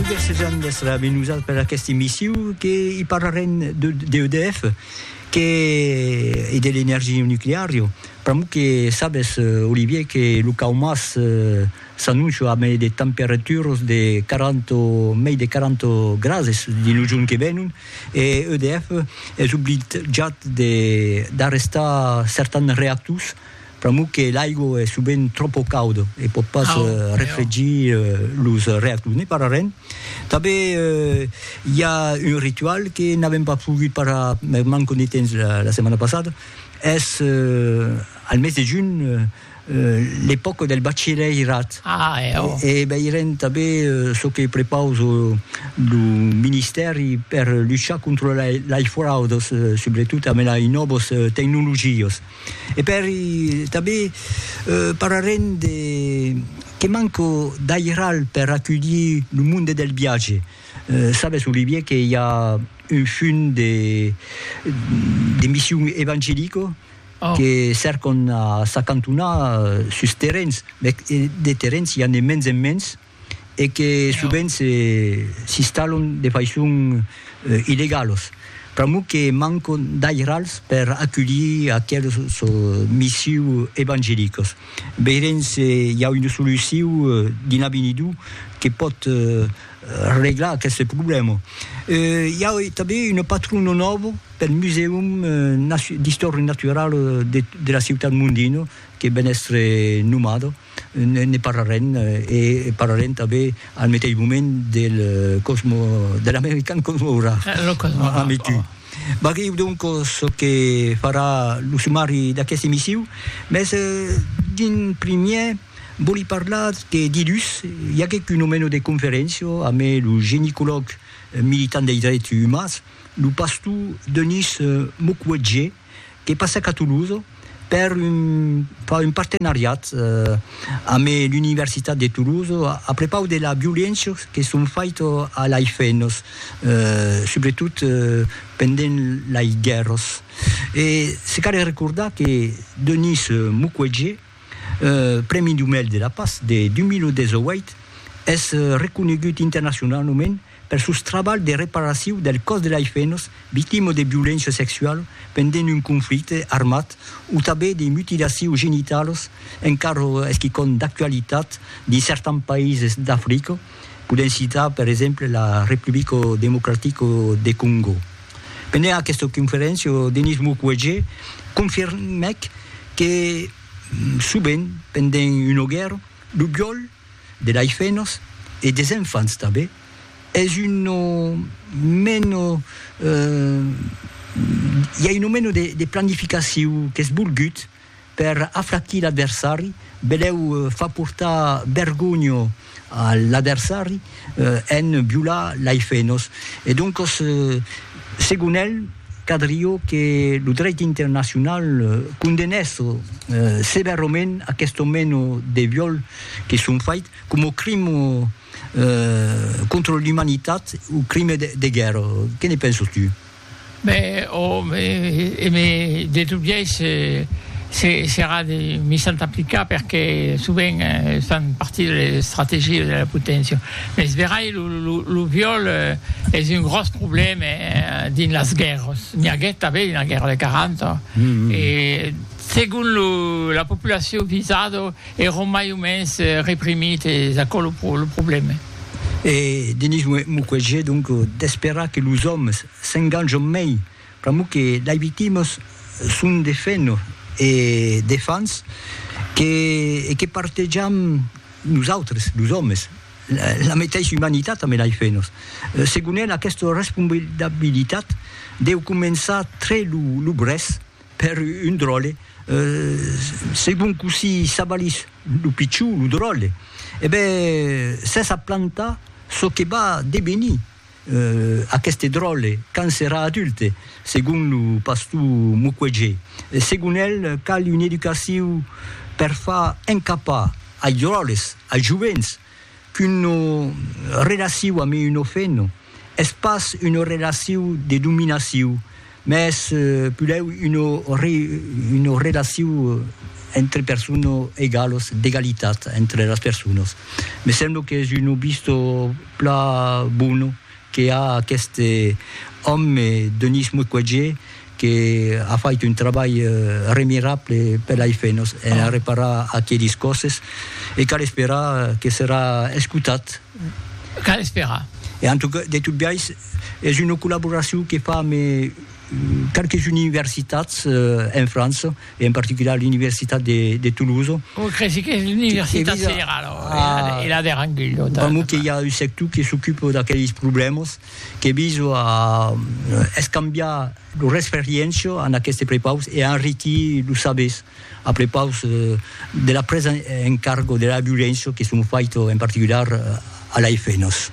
Desejant d'èstre ambe nosat per aqueste emissiu que i parlarem de d'EDF que e de l'energia nucleario pr'amor que sabes Olivier que lo caumas s'annoncia ambe de temperaturas de 40 mei de 40 grades dins lo jorn que venon e EDF es obligat d'arrestar certans reactors Pr'amor que l'aigo es sovent tròpo cauda e pòt pas refregir los reactors. Ne parlarem. Tanben i a un ritual que n'avèm pas pogut parlar per manca de temps la setmana passada, es al mes de junh l'epòca del bachilhèirat e veirem tanben çò que prepausa lo ministèri per luchar contra las fraudas, subretot amb las nòvas tecnologias. E pèri tanben parlarem de que manco d'airal per aculhir lo monde del viatge. Sabes, Olivier, que i a un fum de de mission evangelico que cèrcon a s'acantonar sus terrens, mès de terrens i a ne mens en mens, e que sovent s'installon de faiçon illegalos, pr'amor que mancon d'airals per aculhir aqueles missius evangelicos. Veirem se i a una solucion dins l'avenidor que pòt reglar aqueste problèma. I a tanben una patrona nòva pel Musèum d'Istòria Naturala de la ciutat Mondino que ven èstre nomada. Ne parlarem, e parlarem tanben al meteis moment del Cosmo, de l'American Cosmo Hourard, ambe tu. Vagèu donc çò que farà lo sumari d'aquesta emissiu, mès d'in primièr vòli parlar que dilhus i aguèc un omeno de conferéncia ambe lo genicològ militant dei drets umans, lo pastor Denis Mukwege, que passèc a Toulouse per far un partenariat amb l'Universitat de Toulouse a prepaus de las violéncias que son faitas a las femnas, subretot pendent las guèrras. E se cal recordar que Denis Mukwege, Prèmi Nobel de la Patz de 2018, es reconegut internacionaument Per sos trabalhs de reparacion del còs de lei fenos victimas de violéncia sexuala pendent un conflicte armat o tanben de mutilacions genitalas, encara es quicòm d'actualitat dins certans païses d'Africa, podèm citar per exemple la Republica Democratica de Còngo. Pendent aquesta conferéncia, Denis Mukwege confirmèc que sovent pendent una guèrra, lo viòl de laifenos e des enfants tanben, es un no meno i a un no meno de planificaciu qu'es volgut per afraquir l'adversari, beleu far portar vergonha a l'adversari, en violar lei fenos e doncos segon el cadrió que lo dreit internacional condenèsso sevèrament aquesto meno de viol que son fait coma crimo contra l'umanitat o crime de guèrra que ne pensos tu? Mès òm e me de tot biais serà de mi sant aplicar perque sovent estan partir de estrategies de la poténcia. Mès verai lo viòl es un gròs problème dins las guèrras. N'i aguèt tanben dins la guèrra de 40 e segon la populacion visada, Èron mai o mens reprimit e es aquò lo problème. E Denis Mukwege donc d'esperar que los òmes s'enganjon mei pr'amor que lei victimas son de fenno e de fans que e que partejam nosautres los òmes la meteissa umanitat ambe lei fennos. Segon el aquesta responsabilitat deu començar tre lo brèç. Per un dròlle, se bon cossí s'avalís lo pichon, lo dròlle, e ben s'es a plantar çò que va devenir aqueste dròlle quand serà adulte, segon lo pastor Mukwege. Segon el, cal una educacion per far encapar ai dròlles, ai jovents, qu'una relaciu ame un ofent es pas una relaciu de dominaciu, mès pulèu una relaciu entre persona egalos, d'egalitat entre las personas. Me sembla qu'es un obisdo plan bona que a aqueste òme Denis Mukwege que a fait un trabalh remirable per l'AIFENOS en a reparar aquelis còsses e cal esperar que serà escotat. Cal esperar. E en tot, de tot biais es una collaboracion que fam e qualques universitats en França. e en particular l'universitat de de Toulouse. Oi cresi qu'es l'universitat federala o e la de Rangui. Pr'amor que i a un sector que s'ocupa d'aqueles problèmas que viso a escambiar lor experiéncia en aqueste prepaus e a enriquir los sabers a prepaus de la presa en cargo de la violéncia que son faita en particular a la FNOS.